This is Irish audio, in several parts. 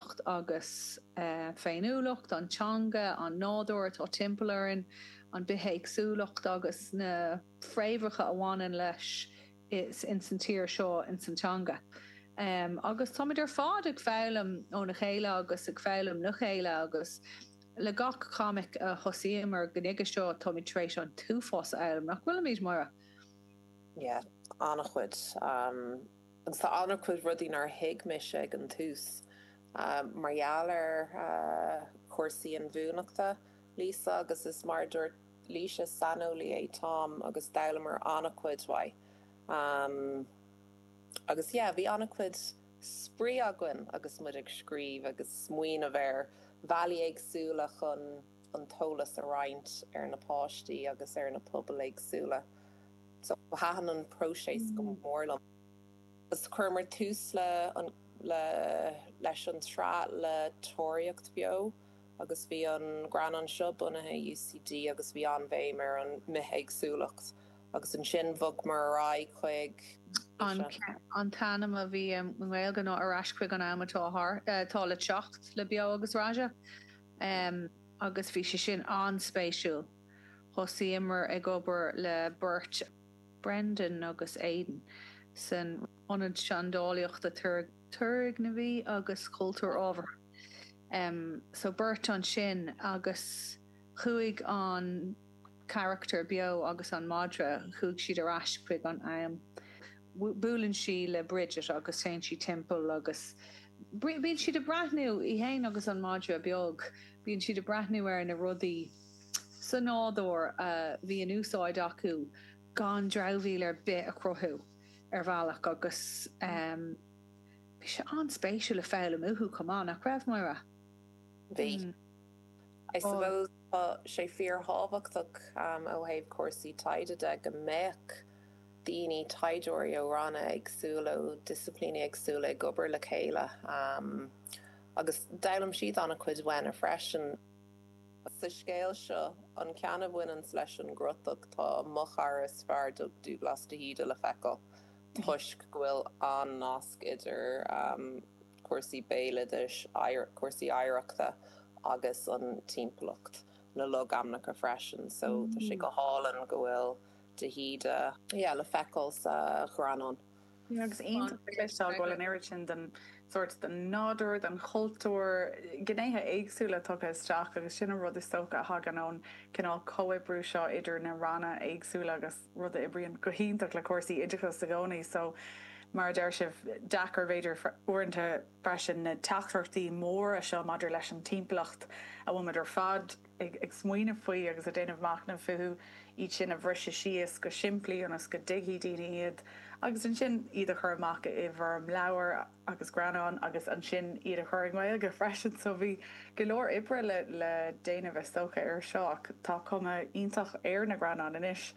beocht agus féiniúlacht, an teanga, an nádúr atá timpeall orainn, an bithéagsúlacht agus na fréamhacha a bhaineann leis in san tír seo, in san teanga. Agus táimid ar fad ag foghlaim óna chéile agus ag foghlaim le chéile agus le gach comic a thosaíomar go nuige seo táimid tar éis an t-uafás a fhoghlaim, nach bhfuilimid, Moira? Yeah, an-chuid. Agus tá an-chuid rudaí nár thuig mise ag an tús mar gheall ar chúrsaí inbhuanaitheachta, Laoise, agus is mar a dúirt Laoise, is saineolaí é Tom agus d'fhoghlamar an-chuid uaidh. Agus yeah, bhí an-chuid spraoi againn agus muid ag scríobh agus smaoineamh ar bhealaí éagsúla chun an t-eolas a roinnt ar na páistí agus ar na pobail éagsúla. Thaitin an próiseas go mór liom agus chuireamar tús leis an tsraith le Tóraíocht Bheo agus bhí an greannán seo bunaithe i UCD agus bhí an-bhéim ar an mbithéagsúlacht agus ansin bhogmar ar aghaidh chuig an an t-ainm a bhí i nGaeilge ná Ar Ais Chuig an Am atá atá le Teacht le Beo agus Raja agus bhí sé sin an-spéisiúil. Thosaíomar ag obair le beirt, Brendan agus Aidan, san Ionad Seandálaíochta Turgnamhaí agus Cultúir Ábhartha, so beirt ansin agus chuaigh an carachtar Beo agus an madra, chuaigh siad ar ais chuig an am. Buaileann sí le Bridget agus téann sí timpeall agus bíonn siad ag breathnú, í fhéin agus an madra beag, bíonn siad ag breathnú ar na rudaí, sa nádúr a bhí in úsáid acu gan dramhaíl ar bith a chruthú ar bhealach agus bhí sé an-spéisiúil le foghlaim uathu chomh maith, nach raibh, Moira? Bhí. I suppose tá sé fíorthábhachtach ó thaobh cúrsaí taighde de go mbeadh daoine, taighdeoirí ó ranna éagsúla, ó disciplíní éagsúla ag obair le chéile agus d'fhoghlaim siad an-chuid uainne freisin. Sa scéal seo, an ceann a bhaineann leis an gcrotach, tá mo chara is fearr, Doug Douglas de hÍde, le feiceáil toisc go bhfuil an-nasc idir cúrsaí béaloidis, cúrsaí oidhreachta agus an timpeallacht, na logainmneacha freisin. So, tá sé go hálainn go bhfuil de hÍde le feiceáil sa ghreannán. Agus iontach le feiceáil go bhfuil an oiread sin den sórt, den nádúr, den chultúr, gnéithe éagsúla tugtha isteach agus sin an rud is dócha a thagann ón gcineál comhoibriú seo idir na ranna éagsúla agus rud a oibríonn go hiontach le cúrsaí oideachais i gcónaí. So, mar a deir sibh, deacair b'fhéidir uaireanta freisin na teachtaireachtaí móra seo maidir leis an timpeallacht a bhfuil muid ar fad, ag smaoineamh faoi agus ag déanamh machnaimh fúthu, iad sin a bhriseadh síos go simplí ionas go dtuigfidh daoine iad, agus ansin iad a chur amach i bhfoirm leabhar agus greannán agus ansin iad a chur i nGaeilge freisin. So bhí go leor oibre le déanamh is dócha air seo ach tá cuma iontach ar na greannáin anois.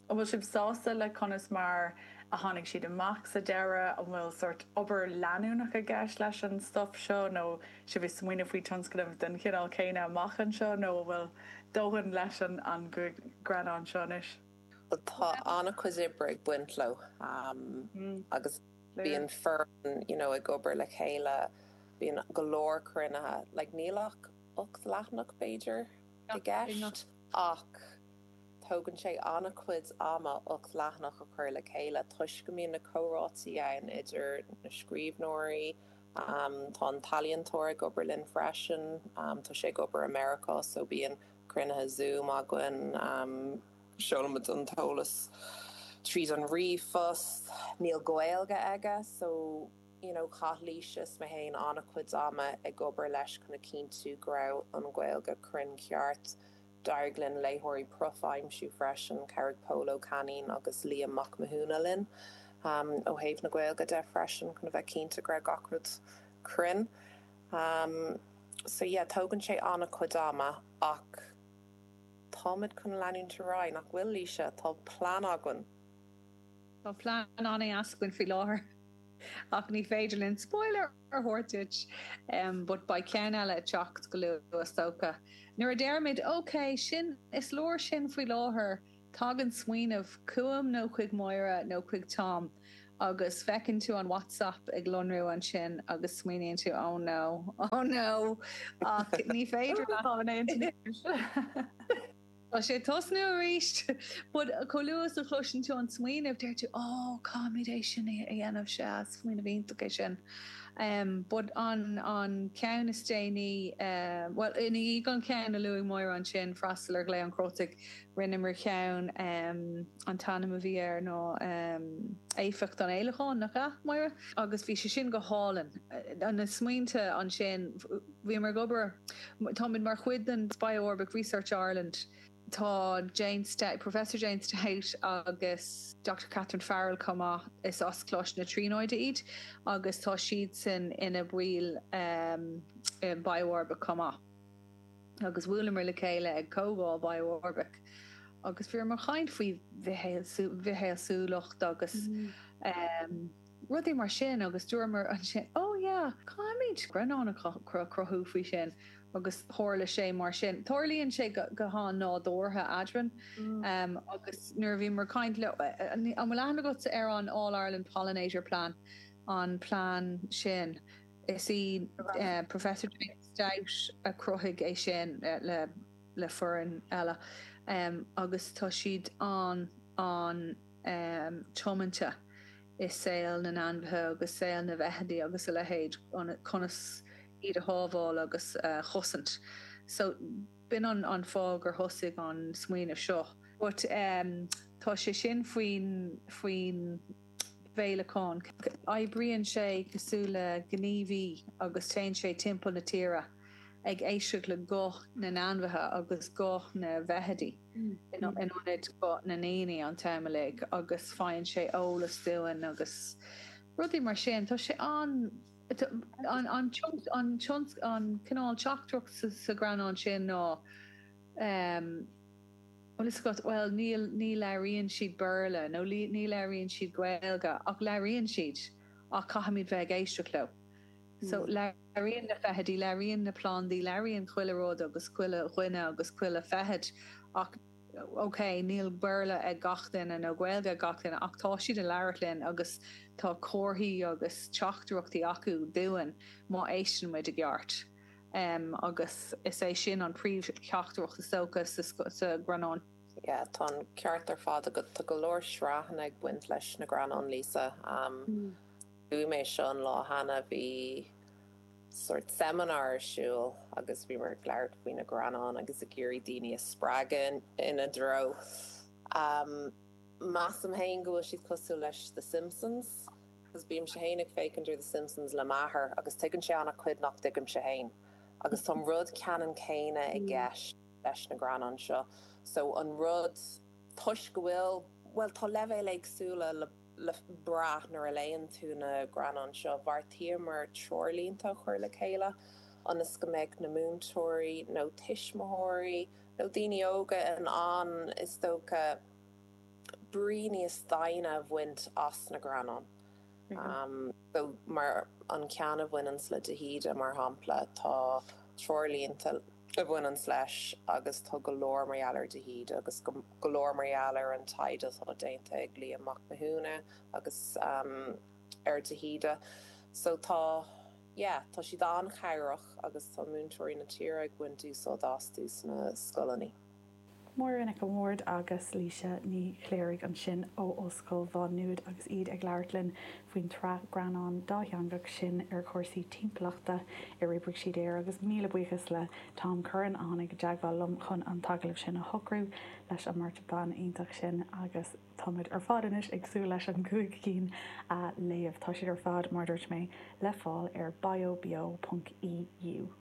An bhfuil sibh sásta le conas mar a tháinig siad amach sa deireadh? An bhfuil sórt obair leanúnach i gceist leis an stuif seo nó sibh a bheith ag smaoineamh faoi tionscnamh den chineál céanna amach anseo nó an bhfuil dóthain leis an greannán seo anois? Tá an-chuid oibre ag baint leo agus bíonn foireann you know ag obair le chéile, bíonn go leor cruinnithe, like níl ach ocht leathanach b'fhéidir i gceist ach Tógann sé an-chuid ama ocht leathanach a chur le chéile toisc go mbíonn na comhráití ann idir na scríbhneoirí, tá an t-ealaíontóir ag obair linn freisin, tá sé ag obair i Meiriceá so bíonn cruinnithe Zoom againn, seolaimid an t-eolas tríd an ríomhphost, níl Gaeilge aige so you know chaith Laoise is mé féin an-chuid ama ag obair leis chun a chinntiú go raibh an Ghaeilge cruinn ceart. D'éirigh linn léitheoirí profaí a aimsiú freisin, chabhraigh Pól Ó Cainín agus Liam Mac Mathúna linn ó thaobh na Gaeilge de freisin, chun a bheith cinnte go raibh gach rud cruinn. So yeah, tógann sé an-chuid ama ach táimid chun leanúint ar aghaidh, nach bhfuil, Laoise? Tá plean againn! Tá plean an-deas againn faoi láthair ach ní féidir linn spoiler a thabhairt duit but beidh ceann eile ag teacht go luath is dócha. Nuair a deirimid OK, sin, is leor sin faoi láthair, tagann smaoineamh chugam nó chuig Máire nó chuig Tom agus feiceann tú an WhatsApp ag lonrú ansin agus smaoiníonn tú oh no, oh no ach ní féidir leat. Tá sé ag tosnú arís! But chomh luath is a chloiseann tú an smaoineamh deir tú Ó, caithfimid é sin a dhéanamh, sea, smaoineamh iontach é sin. But an ceann is déanaí, bhuel, i ndiaidh an ceann a luaigh Máire ansin, Freastal ar Ghlao an Chrótaigh, rinneamar ceann, an t-ainm a bhí air ná Éifeacht an Fhéileacáin, nach ea, Máire? agus bhí sé sin go hálainn, na smaointe ansin. Bhíomar ag obair. Táimid mar chuid den BiOrbic Research Ireland. Tá Jane Stout, Professor Jane Stout agus Doctor Catherine Farrell chomh maith, is as Coláiste na Tríonóide iad agus tá siadsan ina mbaill den BiOrbic chomh maith. Agus bhuaileamar le chéile ag comhdháil BiOrbic agus bhíomar ag caint faoi bhithéagsúlacht agus. rudaí mar sin agus dúramar ansin ó yeah, caithfimid greannán a chruthú faoi sin agus tharla sé mar sin. Tarlaíonn sé go han-nádúrtha em eadrainn agus nuair a bhíomar ag caint leo, an bhfuil aithne agatsa ar an All Ireland Pollinator Plan, an plean sin? Is í Professor Jane Stout a chruthaigh é sin le foireann eile em agus tá siad an. tiomanta i saol na n-ainmhithe agus saol na bhfeithidí agus a leithéid, conas iad a shábháil agus a chosaint. So, b'in an fáth gur thosaigh an smaoineamh seo. But tá sé sin faoin bhféileacán. Oibríonn sé cosúil le gníomhaí agus téann sé timpeall na tíre ag éisteacht le guth na n-ainmhithe agus guth na bhfeithidí. in ionad guth na ndaoine an t-am uilig agus faigheann sé eolas dúinn agus rudaí mar sin. Tá sé an, an cineál teachtaireacht sa ghreannán sin ná tá a fhios agat, bhuel níl, ní labhraíonn siad Béarla nó ní labhraíonn siad Gaeilge ach labhraíonn siad ach caithfimid bheith ag éisteacht leo. So, labhraíonn na feithidí, labhraíonn na plandaí, labhraíonn chuile rud agus chuile dhuine agus chuile feithid ach, ok, níl Béarla ag gach duine nó Gaeilge ag gach duine ach tá siad ag labhairt linn agus tá comharthaí agus teachtaireachtaí acu dúinn má éisteann muid i gceart. em, agus is é sin an príomh-theachtaireacht is dócha sa ghreannán. Yeah, tá an ceart ar fad agat, tá go leor sraitheanna ag baint leis na greannáin, Lisa. em. Luaigh mé seo an lá cheana, bhí sórt seminar ar siúl agus bhíomar ag labhairt faoi na greannáin agus ag iarraidh daoine a spreagadh ina dtreo. Measaim féin go bhfuil siad cosúil leis The Simpsons, agus bímse féin ag féachaint ar The Simpsons le m'athair agus tuigeann sé an-chuid nach dtuigimse féin, agus tá an rud ceannann céanna i gceist leis na greannáin seo. So an rud, toisc go bhfuil, bhuel, tá leibhéil éagsúla le. le brath nuair a léann tú na greannáin seo. Bheartaíomar treoirlínte a chur le chéile ionas go mbeadh na múinteoirí nó tuismitheoirí nó daoine óga in ann, is dócha, brí níos doimhne a bhaint as na greannáin. So, mar an ceann a bhaineanns le de hÍde, mar shampla, tá treoirlínte a bhaineanns leis agus tá go leor mar gheall ar de hÍde agus go. go leor mar gheall ar an taighde atá déanta ag Liam Mac Mathúna agus um ar de hÍde so tá yeah tá siad an-chabhrach agus tá múinteoirí na tíre ag baint úsáid astu sna scoileanna. Máire Nic an Bhaird agus Laoise Ní Chléirigh ansin ó Ollscoil Mhá Nuad agus iad ag labhairt linn faoin tsraith greannán dátheangach sin ar chúrsaí timpeallachta ar oibrigh siad air agus míle buíochas le Tom Curran a tháinig i dteagmháil liom chun an t-agallamh sin a shocrú leis an mbeirt bhan iontach sin agus táimid ar fad anois ag súil leis an gcúig cinn a léamh, tá siad ar fad, mar a dúirt mé, le fáil ar biobeo.eu.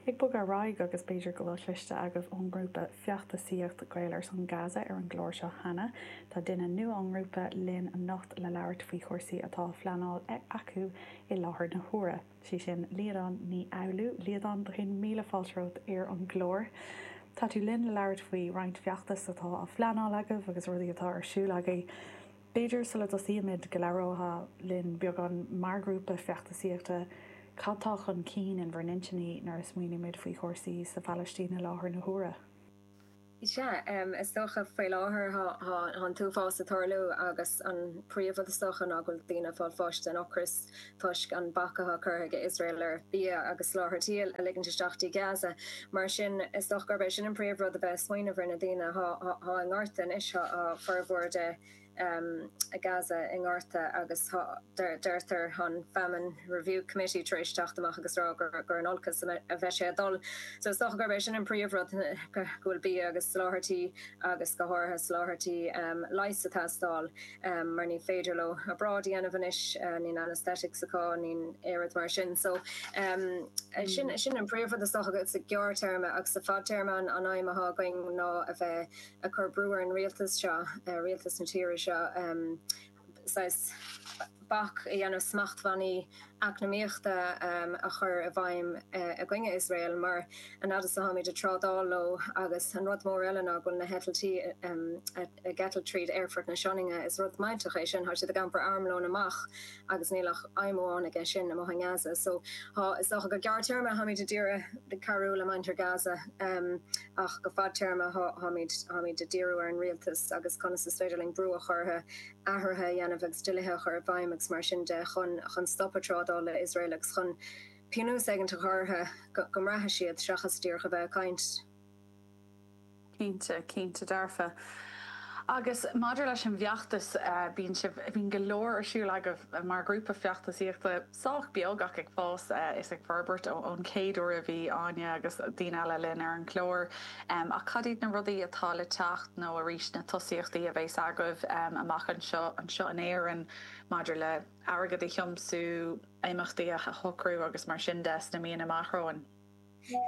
Ag bogadh ar aghaidh, agus b'fhéidir go bhfuil cloiste agaibh ón ngrúpa feachtasaíocht Gaeil ar son Gaza ar an gclár seo cheana, tá duine nua ón ngrúpa linn anocht le labhairt faoi chúrsaí atá á phleanáil acu i láthair na huaire, sí sin Líadan Ní Fhoghlú. Líadan, beagáinín míle fáilte romhat ar an gclár. Tá tú linn le labhairt faoi roinnt feachtas atá á phleanáil agaibh agus rudaí atá ar siúl agaibh. B'fhéidir, sula dtosaímid, go labhrófá linn beagán, mar ghrúpa feachtasaíochta, cad tá chun cinn in bhur n-intinní nuair a smaoinímid faoi chúrsaí sa Phalaistín i láthair na huaire? Sea, is dócha, faoi láthair tá an t-uafás ag tarlú agus an príomhrud is dócha ná go bhfuil daoine ag fáil bháis den ocras. toisc an bac atá curtha ag Iosrael ar bhia agus soláthairtí a ligint isteach dtí Gaza. Mar sin, is dócha gurb é sin an príomhrud a bheith ag smaoineamh ar na daoine atá i ngorta anois, tá formhór de Gaza i ngorta agus deirtear, tá an Famine Review Committee tar éis teacht amach agus rá gur in olcas a bheidh sé ag dul. So is dócha gurb é sin an príomhrud, go bhfuil bia agus soláthairtí agus go háirithe soláthairtí leighis ag teastáil. mar ní féidir leo obráid a dhéanamh anois, níl anaesthetics acu, níl oiread mar sin so sin sin an príomhrud is dócha againn sa ghearrthéarma agus sa fadtéarma an aidhm atá againn ná a bheith ag cur brú ar an rialtas seo, rialtas na tíre seo, saghas bac a dhéanamh smachtbhannaí eacnamaíochta a chur i bhfeidhm i gcoinne Iosrael, mar an fhaid is atáimid ag trádáil leo, agus an rud mór eile ná go bhfuil na heitiltí ag eitilt tríd aerfort na Sionainne. Is rud millteach é sin, tá siad ag iompar armlóin amach agus níl ach aidhm amháin aige sin, amuigh i nGaza. So, tá, is dócha go gearrthéarma táimid ag díriú ar cabhrú le muintir Gaza, ach go fadtéarma táimid ag díriú ar an rialtas agus conas is féidir linn brú a chur orthu. athruithe a dhéanamh agus dlíthe a chur i bhfeidhm agus mar sin de chun chun stop a trádáil le Iosrael agus chun pionós éigint a chur orthu go mbraithfeadh siad, seachas díreach a bheith ag caint. Cinnte, cinnte dearfa. Agus maidir leis an bhfeachtas, bíonn sibh, bíonn go leor ar siúl agaibh mar ghrúpa feachtasaíochta. sách beag ach ag fás is ag forbairt ón chéad uair a bhí Áine agus daoine eile linn ar an gclár. Ach cad iad na rudaí atá le teacht nó arís na tosaíochtaí a bheas agaibh amach anseo in Éirinn maidir le airgead a thiomsú, imeachtaí a shocrú agus mar sin de sna míonna amach romhainn?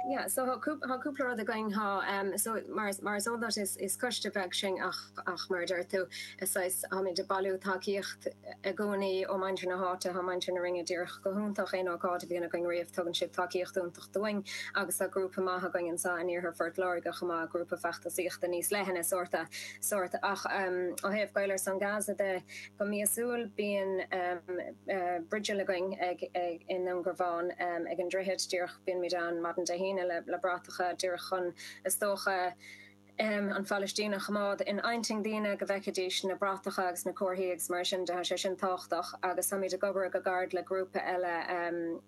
Yeah so thá cúpla rud againn thá em so mar mar is eol duit is is coiste beag sinn ach ach mar a deir tú is saghas tháimid ag bailiú tacaíocht i gcónaí ó muintir na háite thá muintir na Rinne díreach go hiontach aon ócáid a bhíonn againn riamh tugann siad tacaíocht iontach dúinn agus thá grúpa maith againn anseo in iarthar Phort Láirge chomh maith grúpa feachtasaíochta níos leithne sórta sórta ach em ó thaobh Gaeil ar son Gaza de Go míosúil bíonn bigil againn i nDún Garbhán ag an droichead díreach, bímid ann maidin Dé hAoine le bratacha díreach chun, is dócha, an Phailistín a choimeád in intinn daoine, go bhfeicfidís na bratacha agus na comharthaí agus mar sin de, tá sé sin tábhachtach. Agus táimid ag comhoibriú go gairid le grúpa eile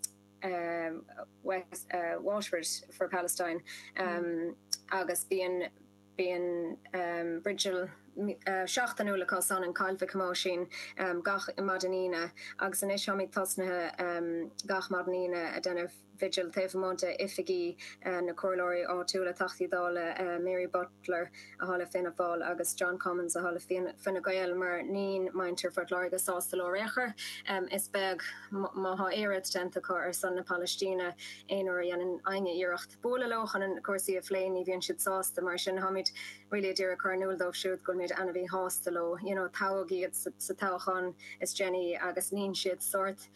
West Waterford for Palestine agus bíonn, Bíonn bigil seachtainiúil acusan i gCoill Mhic Thomáisín gach maidin Aoine agus anois táimid tosnaithe gach maidin Aoine ag déanamh bhigil taobh amuigh de oifigí na comhairleoirí áitiúla, Teachtaí Dála Mary Butler athá le Fianna Fáil agus John Cummins athá le Fine Gael mar níonn muintir Phort Láirge sásta leo ar aon chor. Is beag má thá iarracht déanta acu ar son na Palaistíne aon uair a dhéanann éinne iarracht. bualadh leo chun cúrsaí a phlé, ní bhíonn siad sásta, mar sin táimid really ag iarraidh a chur in iúl dóibh siúd go bhfuil muid ana mhí shásta leo, you know toghadh iad sa toghachán is déanaí agus níonn siad sórt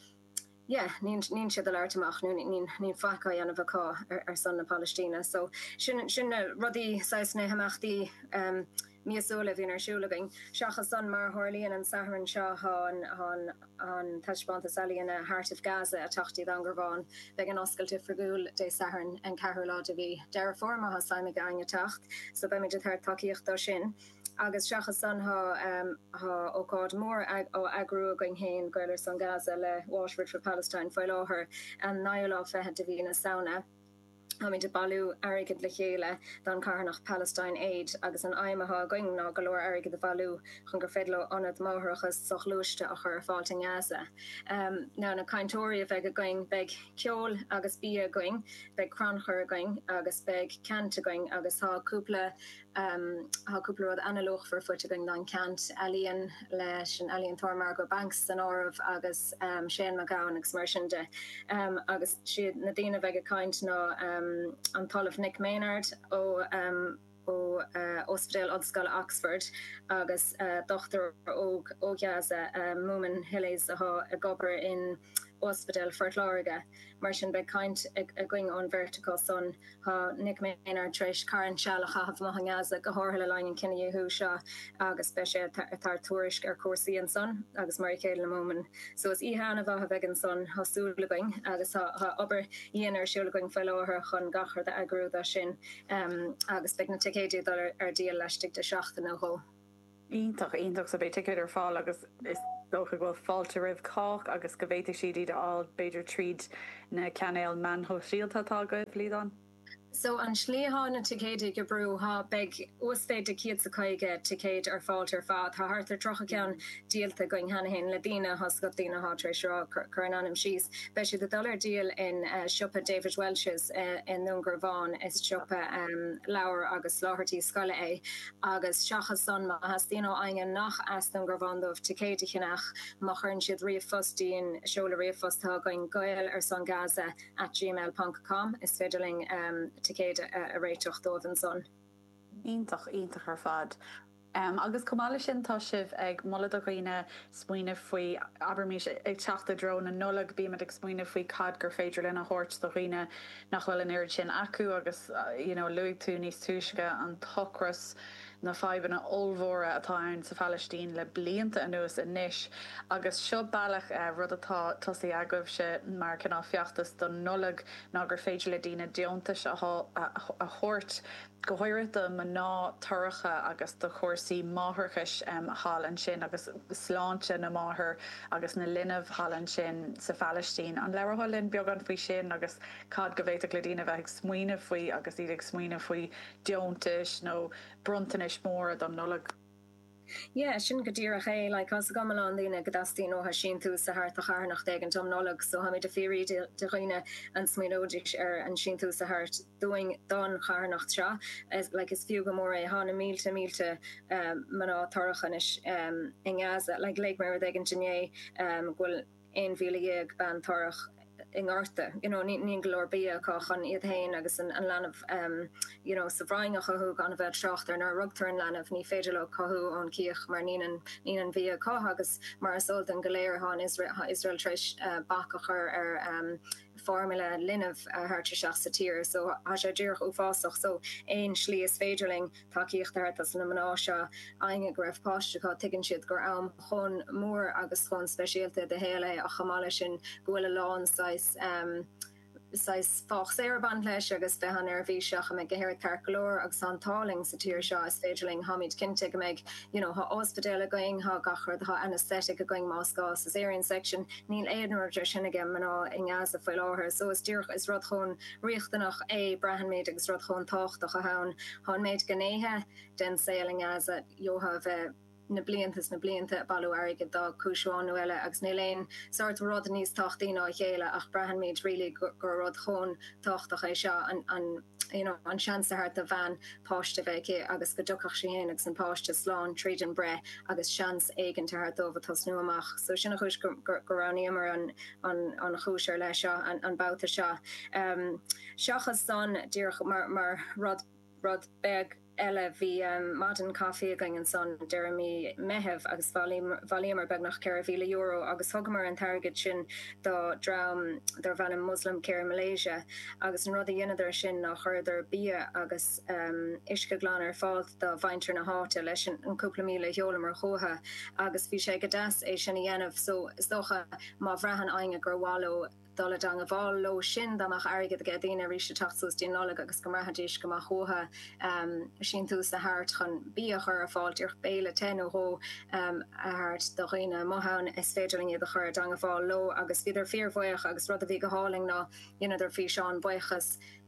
yeah, níonn siad ag labhairt amach nó níonn faic á dhéanamh acu ar son na Palaistíne so sin na rudaí saghas na himeachtaí. míosúil a bhíonn ar siúl againn. Seachas san, mar a tharlaíonn an Satharn seo, tá an taispeántas ealaíne Heart of Gaza, ag teacht dtí Dún Garbhán, beidh an oscailt oifigiúil Dé Sathairn an 4ú lá de mhí Deireadh Fómhair má thá suim ag éinne teacht, so beimid ag tabhairt tacaíocht dó sin. Agus seachas san tá ócáid mhór á eagrú againn fhéin, Gaeil ar son Gaza le Waterford for Palestine, faoi láthair, an 9ú lá fichead de mhí na Samhna. Táimid ag bailiú airgid le chéile don charthanacht Palestine Aid agus an aidhm atá againn ná go leor airgid a bhailiú chun gur féidir leo ionad máithreachais soghluaiste a chur ar fáilt in Gaza. Ná na cainteoirí a bheidh againn, beidh ceol agus bia againn, beidh crannchur againn agus beidh ceant againn agus tá cúpla Thá cúpla rud an-luachmhar faighte againn don ceant, ealaíon leis an ealaíontóir Margot Banks san áireamh agus Shane McGowan agus mar sin de. Agus siad na daoine a bheidh ag caint ná an tOllamh Nick Maynard ó Ospidéal Ollscoile Oxford agus dochtúir óg ó Ghaza, Moumen Hilles, atá ag obair in Ospidéal Phort Láirge, mar sin beidh caint againn ón bheirt acu san. Thá Nick Maynard tar éis carn seal a chaitheamh amuigh i nGaza, go háirithe le linn an cinedhíothú seo, agus beidh sé ag tabhairt tuairisc ar chúrsaí ansan agus mar a chéile le Moumen. So is oíche ana-mhaith a bheidh ansan, tá súil againn, agus tá obair dhian ar siúl againn faoi láthair chun gach rud a eagrú dó sin, agus beidh na ticéid ag dul ar díol laistigh de sheachtain nó dhó. iontach iontach so beidh ticéid ar fáil agus is dócha go bhfuil fáilte roimh chách agus go bhféadfaidh siad iad a fháil b'fhéidir tríd na cainéil meán shóisialta atá agaibh, Liadán? So an slí atá na ticéid ag oibriú, thá, beidh uasmhéid de chéad 's a caoga ticéid ar fáilt ar fad, tá thart ar tríocha ceann díolta againn cheana féin le daoine tá 's agat daoine atá tar éis rá cur a n-ainm síos, beidh siad ag dul ar díol in siopa David Walsh's i nDún Garbhán, is siopa leabhar agus soláthairtí scoile é. agus seachas san, má theastaíonn ó éinne nach as Dún Garbhán dóibh ticéid a cheannach, má chuireann siad ríomhphost dúinn, seoladh ríomhphost atá againn, gaeil-ar-son-gaza at gmail ponc com, is féidir linn ticéid a réiteach dóibh ansan. Iontach, iontach ar fad. Agus chomh maith leis sin, tá sibh ag moladh do dhaoine smaoineamh faoi, abraimis, ag teacht i dtreo na Nollag, bímid ag smaoineamh faoi cad gur féidir linn a thabhairt do dhaoine, nach bhfuil an oiread sin acu agus, you know, luaigh tú níos túisce an t-ocras, na fadhbanna ollmhóra atá ann sa Phalaistín le blianta anuas anois agus seo bealach, rud atá tosaithe agaibhse mar cineál feachtas don Nollaig ná gur féidir le daoine deontais a thabhairt, go háirithe do mhná torracha agus do chúrsaí máithreachais thall ansin agus sláinte na máthar agus na linbh thall ansin sa Phalaistín. An labharfá linn beagán faoi sin agus cad go bhféadfadh le daoine a bheith ag smaoineamh faoi agus iad ag smaoineamh faoi deontais nó bronntanais mhóra don Nollaig? Yeah, sin go díreach é. Like, tá 's agam a lán daoine go dteastaíonn uatha síntiús a thabhairt do charthanacht éigint um Nollaig, so táimid a' fiafraí de dhaoine an smaoineoidís ar an síntiús a thabhairt dúinn don charthanacht seo. Like, is fiú go mór é. Thá na mílte mílte mná torrach anois i nGaza. Like, léigh mé rud éigint inné go bhfuil. 11,000 bean torrach i ngorta, you know, nín go leor bia acu chun iad féin agus an leanbh you know sa bhroinn a chothú, gan a bheith ag trácht ar nuair a rugtar an leanbh, ní féidir leo cothú ón gcíoch mar nín an bhia acu agus mar is eol dúinn go léir thá an Iosrael tar éis bac a chur ar formula linbh a thabhairt isteach sa tír so thá sé díreach uafásach so aon slí is féidir linn tacaíocht a thabhairt. Tá a fhios ag na mná seo againne go raibh páiste acu, tuigeann siad gur am chomh mór agus chomh speisialta do shaol é ach chomh maith leis sin go bhfuil a lán saghas, saghas faitíos ag baint leis agus bheith an-neirbhíseach an mbeidh gach aon rud ceart go leor agus tá an t-ádh linn sa tír seo is féidir linn, táimid cinnte go mbeidh you know tá ospidéal againn, tá gach rud, tá anaesthetic againn más gá, cesarean section, níl aon rud de sin ag mná i nGaza faoi láthair so is díreach, is rud chomh. riachtanach é. Braitheann muid agus rud chomh tábhachtach atá ann. Tá an méid gnéithe den saol i nGaza, gheofá a bheith na blianta is na blianta, bailiú airgid do chúis amháin nó eile, agus níl aon sórt rud níos tábhachtaí ná a chéile, ach braitheann muid really gur rud chomh tábhachtach é seo, an, an, you know, an seans a thabhairt do bhean páiste a bheith aici agus go dtiocfadh sí féin agus an páiste slán tríd an breith agus seans éigin a thabhairt dóibh ag tosnú amach. So sin an chúis go, go, go roghnaíomar an, an chúis ar leith seo an babhta seo. Seachas san, díreach mar rud beag eile, bhí maidin chaifí againn ansan deireadh mí Meitheamh agus bhailíomar beagnach €4,000 agus thugamar an t-airgead sin do dhream darb ainm Muslim Care Malaysia agus an rud a dheineadar sin ná chuireadar bia agus uisce glan ar fáil do mhuintir na háite leis an gcúpla míle a sheolamar chucu agus bhí sé go deas é sin a dhéanamh so is dócha má bhraitheann éinne gur mhaith leo dul i dteangabháil leo sin dá mbeadh airgead aige daoine arís ag teacht suas dtí'n Nollaig agus go mbraithfidís go mba chuacha síntiús a thabhairt chun bia a chur ar fáil díreach béile te nó dhó a thabhairt do dhaoine amuigh ann is féidir linn iad a chur i dteangabháil leo agus bhíodar fíor bhaoch agus rud a bhí go hálainn ná dheineadar físeán buíochas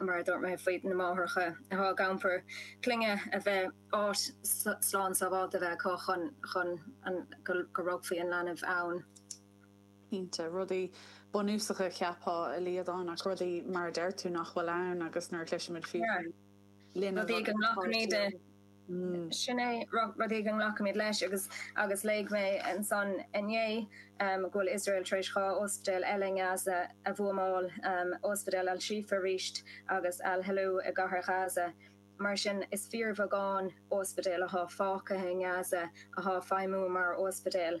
mar a dúirt mé faoi na máithreacha atá ag iompar clainne a bheith áit slán sábháilte bheith acu chun chun go rugfaí an leanbh ann. Cinnte, rudaí bunúsacha cheapfá a Liadáin, ach rudaí, mar a deir tú, nach bhfuil ann agus nuair a chloisimid fiú faoi linn a bhfuil páirtí ann. Sin é rud éigin a nglacaimid leis. Agus agus léigh mé ansan inné go bhfuil Iosrael tar éis dhá ospidéal eile i nGaza a bhuamáil, ospidéal Al-Shifa arís agus Al-Helou i gCathair Ghaza. Mar sin, is fíorbheagán ospidéal atá fágtha i nGaza atá ag feidhmiú mar ospidéal.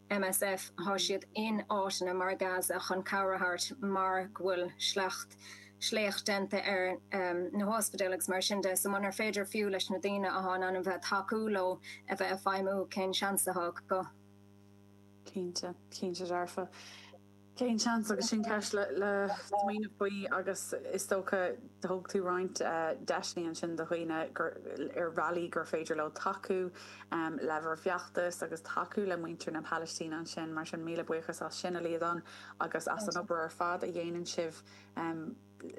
MSF, Thá siad in áiteanna mar Gaza chun cabhair a thabhairt mar go bhfuil sleacht, sléacht déanta ar na hospidéil agus mar sin de. So munar féidir fiú leis na daoine athá in ainm bheith tacú leo a bheith a' feidhmiú cén seans athá acu? Cinnte, cinnte dearfa. Cén seans? Agus sin ceist le smaoineamh faoi agus is dócha thug tú roinnt deiseanna ansin do dhaoine ar bhealaí gur féidir leo tacú le bhur bhfeachtas agus tacú le muintir na Palaistíne ansin, mar sin míle buíochas as sin, a Liadán, agus as an obair ar fad a dhéanann sibh.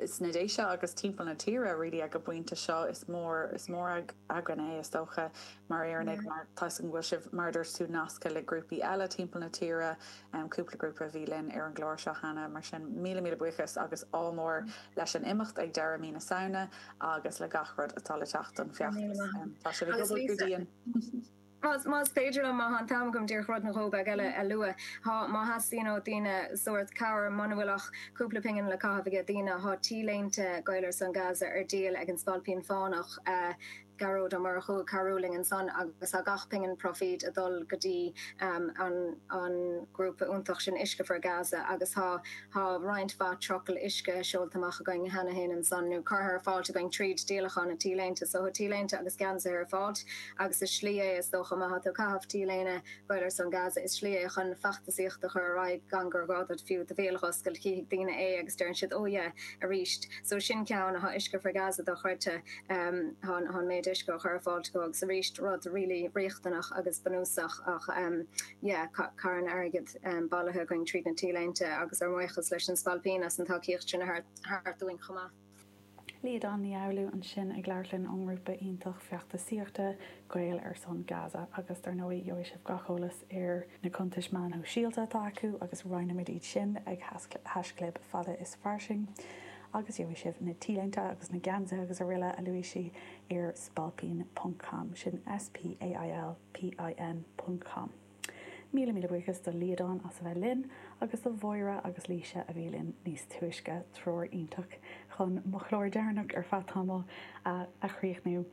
sna Déise agus timpeall na tíre really ag an bpointe seo. Is mór, is mór againn é, is dócha, mar Éireannaigh mar tá 'fhios agam go bhfuil sibh, mar a dúirt tú, nasctha le grúpaí eile timpeall na tíre, cúpla grúpa a bhí linn ar an gclár seo cheana, mar sin míle míle buíochas agus ádh mór leis an imeacht ag deireadh mí na Samhna agus le gach rud atá le teacht don Feachtas. Tá sibh ag obair go dian! Más féidir liom, má thá an t-am agam, díreach rud nó dhó beag eile a lua. Thá, má theastaíonn ó daoine sórt cabhair, muna bhfuil ach cúpla pingin le caitheamh aige daoine, thá T-léinte Gaeil ar son Gaza ar díol ag an Spailpín Fánach, Gearóid Ó Murchú, ag cabhrú linn ansan agus thá gach pingin proifíd ag dul go dtí an grúpa iontach sin Uisce for Gaza agus thá, Tá roinnt mhaith trucail uisce seolta amach againn cheana féin ansan, nó curtha ar fáilt againn tríd díolachán na T-léinte so. Tá T-léinte agus geansaithe ar fáilt, agus is slí é, is dócha, má thá tú ag caitheamh T-léine Gaeil ar son Gaza, is slí é chun feachtasaíocht a chur ar aghaidh gan gur gá duit fiú do bhéal a dh'oscailt. Chífidh daoine é agus deireann siad, Oh yeah, arís. So sin ceann, thá Uisce for Gaza dochreidte, thá an méid uisce á chur ar fáilt acu, agus arís, rud really riachtanach agus bunúsach, ach. yeah carn airgid bailithe againn tríd na T-léinte agus ár mbuíochas leis an Spailpín as an tacaíocht sin a thabhairt dúinn chomh maith. Liadán Ní Fhoghlú ansin ag labhairt linn ón ngrúpa iontach feachtasaíochta, Gaeil ar son Gaza, agus dar ndóigh gheobhaidh sibh gach eolas ar na cuntais meán shóisialta atá acu agus roinnfimid iad sin ag haishchlib fada is fairsing agus gheobhaidh sibh na T-léinte agus na geansaithe agus araile a luaigh sí ar spailpín ponc com, sin S-P-A-I-L. pin. com. Míle míle buíochas do Liadán as a bheith linn, agus do Mháire agus Laoise a bhí linn níos túisce, triúr iontach chun mo chlár deireanach ar feadh tamaill a a chríochnú.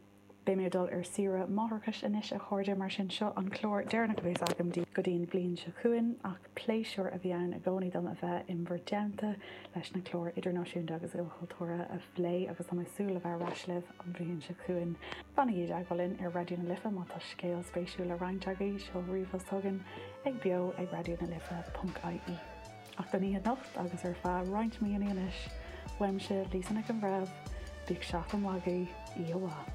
Beidh mé ag dul ar saoire máithreachais anois a chairde, mar sin seo an clár deireanach a bhéas agam daoibh go dtí an bhliain seo chugainn, ach. Pléisiúr a bhí ann i gcónaí dom a bheith in bhur dteannta le scéalta idirnáisiúnta agus ilchultúrtha a phlé agus tá mé ag súil le bheith ar ais libh an bhliain seo chugainn. Fanaigí i dteagmháil linn ar Raidió na Life má tá scéal spéisiúil le roinnt agaibh, seol ríomhphost chugainn ag beo@raidionalife.ie. Ach don oíche anocht agus ar feadh roinnt míonna anois, uaimse, Lisa Nic an Bhreithimh, bíodh seachtain mhaith agaibh, oíche mhaith.